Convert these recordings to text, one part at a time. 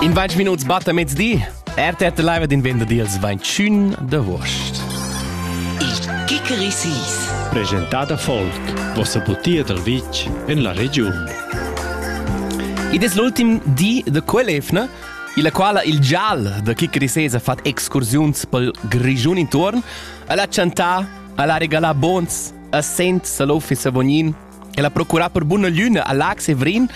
In vaig minuts batta mezdi. RTT Live din venda deals vainchün da Wurst. Il Kikerisis. Presentada Folk, vossa butia dal vitg en la regiun. Id es l'ultim di da quell'efna, illa quala il gial da Kikerisis ha fat excursiuns pel Grischun intuorn, al ha chantà, al ha regalà bons assent Salofi Savognin El ha procurà per buna lüna a Lac Severin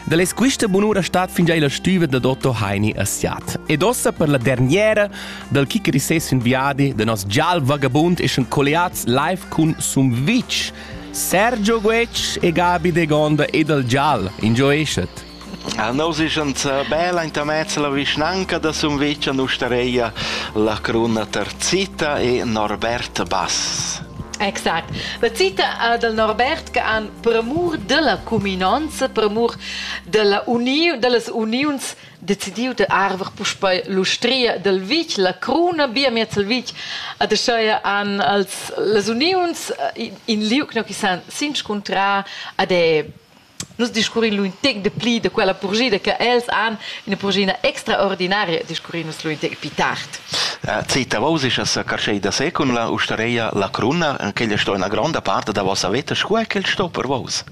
da les quista bunura stat fingià illa stüva da Dotto Heini a Siat. Ed ossa per la derniera dal kicker i ses ün viadi da nos gial vagabund eschan colliats live cun Sumvitsch, Sergio Guetsch e Gabi de Gonda e dal gial. Ingioeschet! Jau nu seschan sà bel aintamez la vischnanca da Sumvitg a l'ustareia La Cruna Terzita e Norbert Bass. Exact. La cita del Norbert che han premur della cuminonza, premur della uniu, dellas uniuns decidiu de arver puspei l'ustria del vitg, la cruna bia miez il vitg, ad aschaia han als, las uniuns in liug no chi san s'inscuntrar ad è Nus discurrin lu in tec de pli de quella purgida che els han ina purgina extraordinaria discurrin nus lu in tec pi tard. Zeta vos is sa carschei da se cun la ustareia la cruna, quella sto ina gronda part da vossa veta, sco è quel sto per vos?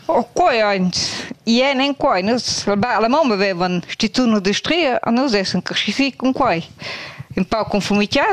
Oh, quei eins. Ien en quei. Nus, la mamma vevan stitun de stria, a nus essen casci si con quei. In pau conformità,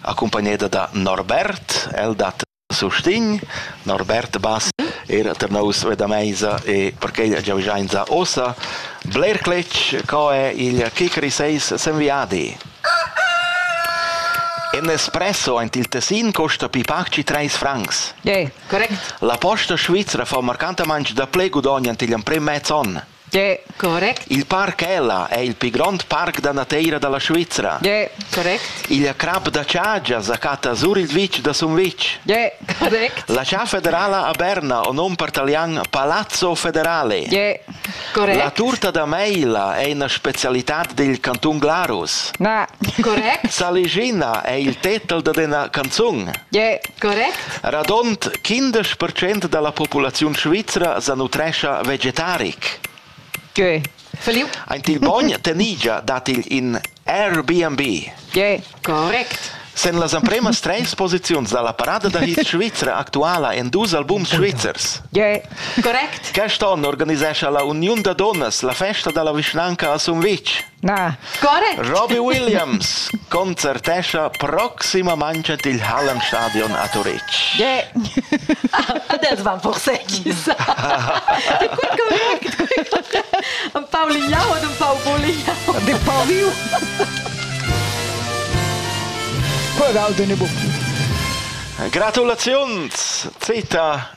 accumpagneda da Norbert, el dat sustegn. Norbert Bass era tar nous ve da meisa e perquei giaugiainsa ossa. Bler cletg co è il Kikri 6 s'enviadi. En espresso ant il Tessin costa pi pac ci 3 francs. Yeah, correct. La posta svizra fa marcantamang da ple gudogn ant igl emprem mez onn. De, correct. Il parc Ella è il pli grond parc da nateira da la Svizra. De, correct. Il crap da Chagia sa chatta sur il vitg da Sumvitg. De, correct. La cha federala a Berna, o nom per talian Palazzo Federale. De, correct. La turta da Meila è una specialità del canton Glarus. Na, correct. Saligina è il tetel da una canzun. De, correct. Radond quindesch percent dalla populaziun svizra sanutrescha vegetaric. Gie. Feliu? Aint il bogn tenigia dat igl in Airbnb. Gie, correct. Sen las ampremas treis posiziuns dalla parada da hit svizra actuala en dus albums svizzers. Gie, correct. Quest onn organisescha la Uniun da donnas la festa dalla vischnanca a Sumvitg. Na. Score? Robbie Williams concertescha proximamain il Hallenstadion a Turitg. Yeah. Adesso va por sekissa. Un pau lignau ed un pau bulignau. De pau viu. Qual dal dene bu? Gratulaziuns, Zita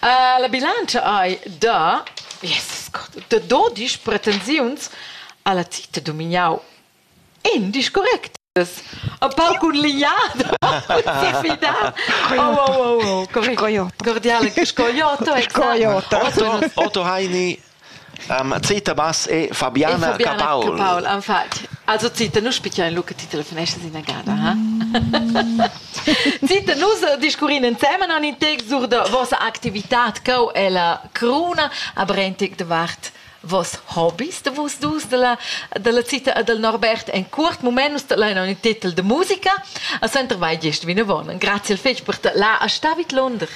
La bilantscha ei da, Jesus Gott, da dodisch pretensiuns alla tita dumignau. In disch correct. A pau cun lignada. Defidar. Oh, oh, oh, oh, correct. Cordiale, scoiotto. Scoiotto. Otto Heini Zita Bass e Fabiana, e Fabiana Capaul. Capaul. Infatti. Also Zita, nu spicia in lu che ti telefonestas inagada, ha? Zita, nus discurrin insemen an in text sur da vossa activitat co è la cruna a Brentig davart vos hobbies de vos dus de la, de la Zita e del Norbert en curt moment nus lein un titel de musica a Center vai gest vinavon. Grazie al fetg per la a Stavit Londra.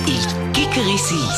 Il Kikerisi